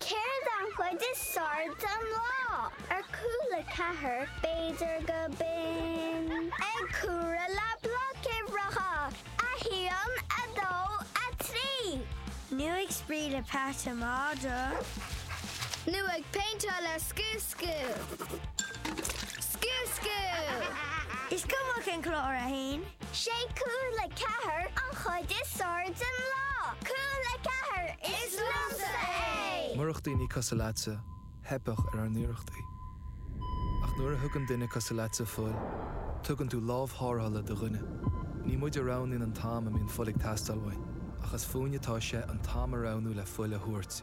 Céard an chuid is fearr den lá? Ar Cúla Ceathair b'fhéidir go binn. Ag comhaireamh le bloic uimhreacha, a haon, a dó, a trí. Nó ag spraoi le peata madra. Nó ag péinteáil le scuab. Scoil! Scoil, scoil! Is cuma cén clár é. 'Sé Cúla Ceathair an chuid is fearr den lá! Cúla Ceathair, is liomsa é! Murach daoine cosúil leatsa, theipeadh ar ár n-iarrachtaí. Ach nuair a thugann duine cosúil leatsa fuil, tugann tú lámh tharrthála do dhuine. Ní muid a roghnaíonn an t-am a mbíonn fuil ag teastáil uainn, ach is fúinn atá sé an t-am a roghnú le fuil a thabhairt.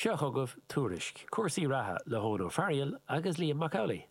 Seo chugaibh tuairisc cúrsaí reatha le hEoin Ó Fearghail agus Liam Mac Amhlaigh.